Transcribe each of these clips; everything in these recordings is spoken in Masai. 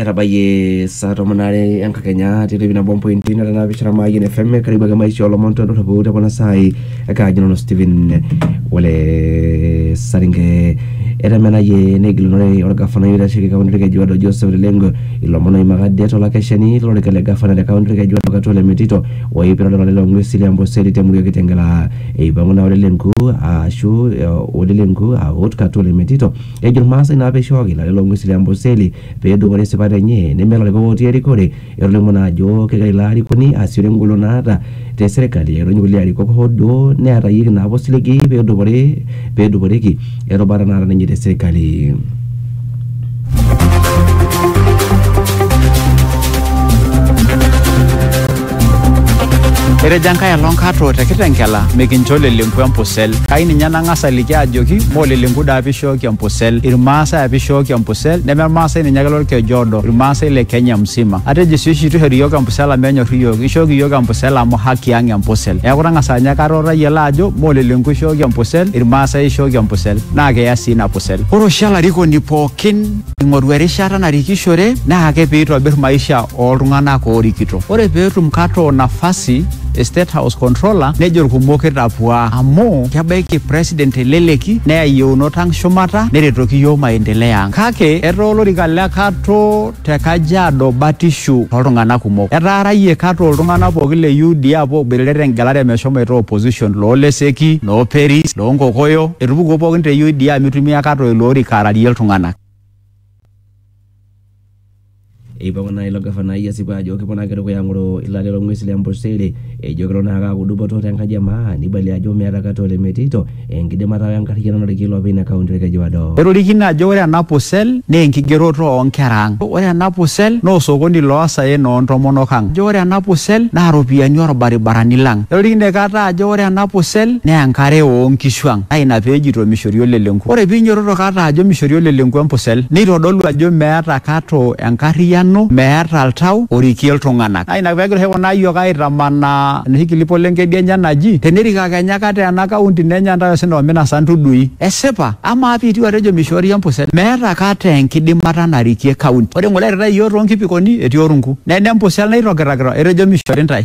etabayie saa tomon aare enkakenya titipin nabo mpointi nara naapishana maayian fm karibu ake maisha olomon todorropu te kuna saai ekaaji nanu Stephen ole saringe etemenayie negilunore olgafanai oitasheki kaunti olkejuado Joseph Lelengo ilomon oimaka det olakeshani lolorika le gavana te kaunti olkejuado Katwale Metito oipirta olorere loo ng'uesi le Amboseli temurua e Kitengela eipang'u naa Ole Lenku aashu Ole Lenku aut Katwale Metito Ejo Ilmaasai naa peishooki lale loo ng'wesi le Amboseli pee edupore esipata enye neme ilarikok ootii erikore. Etolimuo naa ajo kegira ilo arikoni aasiore engolon naata te serkali airony kulie arikok hoo duo neetayieki naapa osiligi pee edupore pee eduporeki erubata naata ninye te serkali. Etejo enkae alo nkato te Kitengela mikincho lelenku empusel. Kai ninye nang'as aliki ajoki moo lelenku daa pee ishooki empusel. Ilmaasai apa ishooki empusel neme Ilmaasai ninye ake lolkeju odo, Ilmaasai le Kenya msima. Atejo sii oshi eitu eishori iyiook empusel amu enyor iyiook. Ishooki iyiook empusel amu haki ang empusel. Neeku tang'asa ninye kata o tayiolo ajo moo lelenku ishooki empusel, Ilmaasai ishooki empusel naa kiya sii ina pusel. Ore oshi olarikoni pookin ing'oru erishata narikishore naa ake pee eitobir maisha ooltung'anak oorikito. Ore pee etum Kato nafasi e State House Controller nejo ilkumok kitapuaa amu kebaiki President te leleki neya iyieunot ang shumata neretoki iyiook maendeleo ang. Kake etaa olorika le Kato te Kajiado batishu too ltung'anak kumok. Etaarayie Kato iltung'anak pooki le UDA apuo aoboitare te ngelare meshomoita opposition loo Leseki, noo Peris, loo Nkokoyo, etupukuo pookin te UDA mitumia kata ilo orika ararie iltung'ana. Eipang'u naa ilo gafanai esipa ajo keponaki dukuya ang'oro ilaleta loo ng'uesi le Amboseli ejo kelo naa aaku dupoto te nkaji e maa neibalie ajo meeta kata olemeitito enkidimata o enkarriyiano narikie iloopeny ina kaunti Olkejuado. Etorikine ajo ore ena pusel naa enkigeroto oo nkera ang. Ore ena pusel naa osokoni loo saen oo ntomonok ang. Ejo ore ena pusel naa ropiyiani oo lbaribarani lang. Etorikine kata ajo ore ena pussel naa enkare oo nkishu ang naa ina pee ejito mishori olelenku. Ore pee inyototo kata ajo mishori olelenku empussel neitodolu ajo meeta kata enkarriyiano, meeta oltau orikie iltung'ana. Naa ina pee egira oshi kuna ayiok aitamanaa enoshi kilipo le nkedienye naji tenerik ake kenya kata ena kaunti nenya intae osina o minasa intudui. Esipa? Amaa pee itiu atejo mishoori empussel? Meeta kata enkidimata narikie kaunti. Ore ng'ole eirritai iyiook too nkipikoni etii orunku. Nena empussel naitogirakita etejo mishori intae.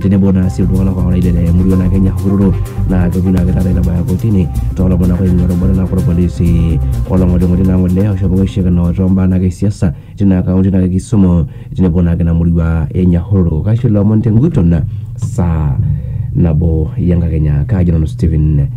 tenebo naa sii iltung'anak ooraided te murua naa Kenya Hururu naa kepuo naake taata aitabaya kotini toolomon naake oing'ua erubata naake orpolisi olong'oling'oli naa ng'ole oshomo aishikana toombaa naake e siasa tina kaunti naake e Kisumu tenebo naake ina murua e Nyahururu. Kaisho ilomon tenguton saa nabo enkakenya. Kaaji nanu Stephen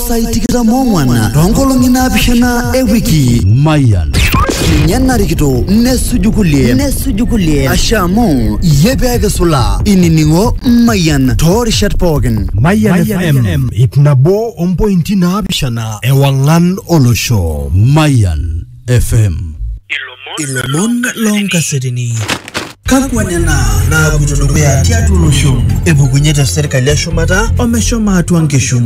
sai tikitam ong'wana toonkolong'i naapishana e wiki mayan ninye narikito nesuju kulie nesuju kulie ashe amu iyie pee kisula inining'o mayian toorishat pookin Mayan FM ip nabo ompointi naapishana ewang'an olosho. mayan FM. Ilomon loonkasetini. Kakwa nena naapuito dukuya tiatua olosho? Epukunye te serkali eshumata omeshomo atua nkishu.